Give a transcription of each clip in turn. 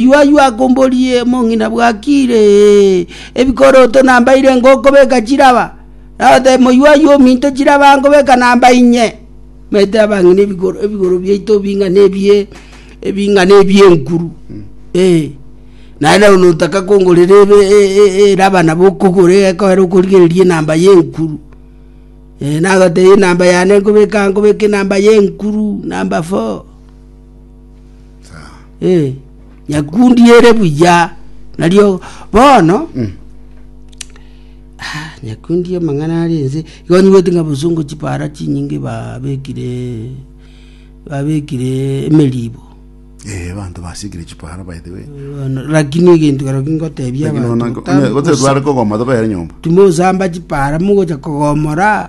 Yua yua akomborie mong'ina bwakire ebikoroto nambaire ngokobeka chiraba. Nagote moyua yua ominto chiraba nkobeka namba inye. Mete abang'ina ebigoro ebigoro biaito bing'ana ebie ebing'ana ebie nkuru. Eh. Naende notaka kongorera ebe eraba nabo okogore ekoera okorigereria enamba ye nkuru. Nagote enamba yane nkobeka nkobeka enamba ye nkuru namba four. Eh, nyakundi ere buya nario bono Ah, nyakundi amang'ana ari ense igonyiwete ng'a bosungu chipara chinyinge babekire babekire emeribo Eh, abanto basikire chipara by the way Bono, lakini egento kero kingotebia lakini abanto ona gotari kogoma tokoyera nyomba timosamba chipara mogocha kogomora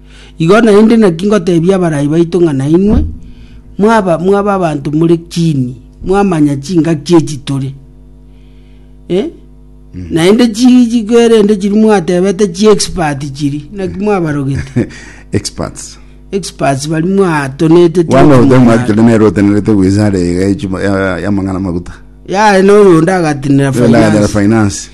Igo naende naki ngoteebia abarai baito ng'a nainwe mwaba mwaba abanto more kiini, mwamanya chingaki echi tore. Eh? Naende chi- chiko erende chiri mwateebete chiexpert chiri, naki mwabarogete. experts Experts bari mwatonete tiri one of them okomanya. actually nero otenerete wizara iga echi- ya- ya- yamang'ana maguta yare noyonde agatinira Yonde agatera finance finance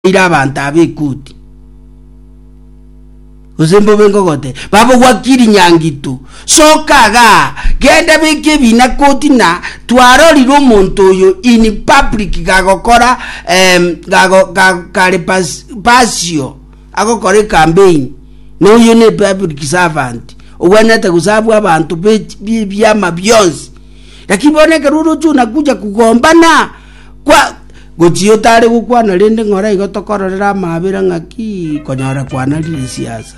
Ira abanto aba ekuti, gose mbobe ngogote, babogwakiri nyangitu, soka aga, genda beke ebina koti na twarorire omonto oyo in public gagokora um, gago, ga, kare pas, pasio agokora ecampaign na oyo ne public servant ogwenerete gosavu abanto bibiama bionsi lakini bono ekero oroche onakuja kugombana kwa Gochia otare gokwana rende ng'ora igo tokororera amaabera ng'aki konyora kwana Lisiasa.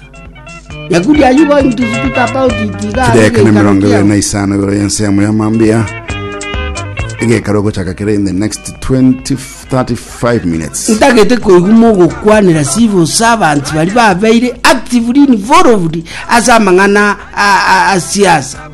Nyakuri are you going to speak about it iga are Chideka na geikaro mirongo ebere kiao? na isano igoro y'ensemo ya mambia egekara ogochaka kere in the next 20 35 minutes ntagete koigwa mogokwanera civil servants bari babeire actively involved ase amang'ana a- a- a siasa